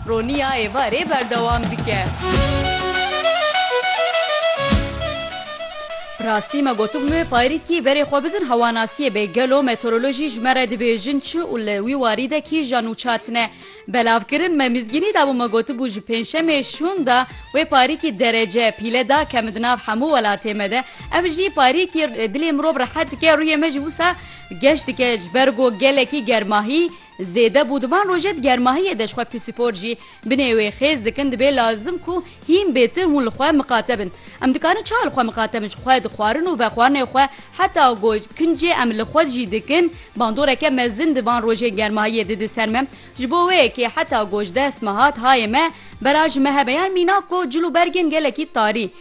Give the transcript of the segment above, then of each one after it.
Roniya êvarê berdewam dike. Bi rastî me gotibûye Payrîkî berê xwe bidin hewanasiyê bê gelo meteorolojî ji me re dibêjin çi û li wî warî de kî jî ya nûçar tine. Belavkirin me mizgînî dabû me gotibû ji pêncşemê şûn de wê Payrîkî derece pîle da kemi di nav hemû welatê me de. Ev jî Payrîkî dilê mirov rehet dike rûyê me jî wisa geş dike ji ber ku gelekî germahî Zêde bû di van rojê di germahiyê de ji xwe pîsîpor jî binê wê xêz dikin dibê lazim ku hîn bêtir hûn li xwe miqate bin. Em dikarin çawa li xwe miqate bin ji xwe di xwarin û vexwarinê xwe heta ku kincê em li xwe jî dikin bandoreke mezin di van rojên germahiyê di di ser me ji bo wê kê heta ku ji dest me hat hayê me bera ji me hebe yan mîna ku cil û bergên gelekî tarî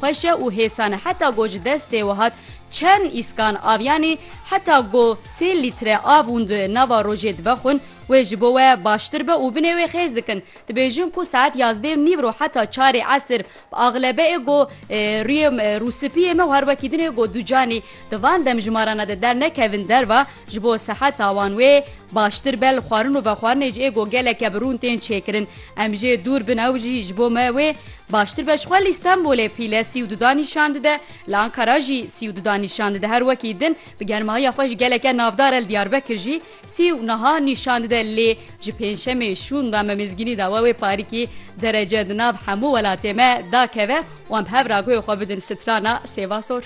Xweşe û hêsane heta go ji destê we hat çend îskan avyanê heta go sê lître av hûn di nava rojê divexwin wê ji bo we baştir be û binê wê xêz dikin. Dibêjin ku saet yazdê û nîv ro heta çarê esir bi axlebe ê go rûyê rûspiyê me û her wekî din ê go du canê di van demjimarana de dernekevin derva ji bo seheta wan wê baştir be. Li xwarin û vexwarinê jî ê go geleke bi rûn tên çêkirin. Em jê dûr bin ew jî ji bo me wê Baştir be ji xwe li Stenbolê pîle sî û duda nîşan dide, li Ankara jî sî û duda nîşan dide. Her wekî din bi germahiya xwe ji geleke navdar e li Diyarbekir jî sî û niha nîşan dide lê ji pêncşemê şûnda me mêzgînî da we wê parîkî derece di nav hemû welatê me dakeve wan bi hev ragoyê xwe bidin strana sêva sor.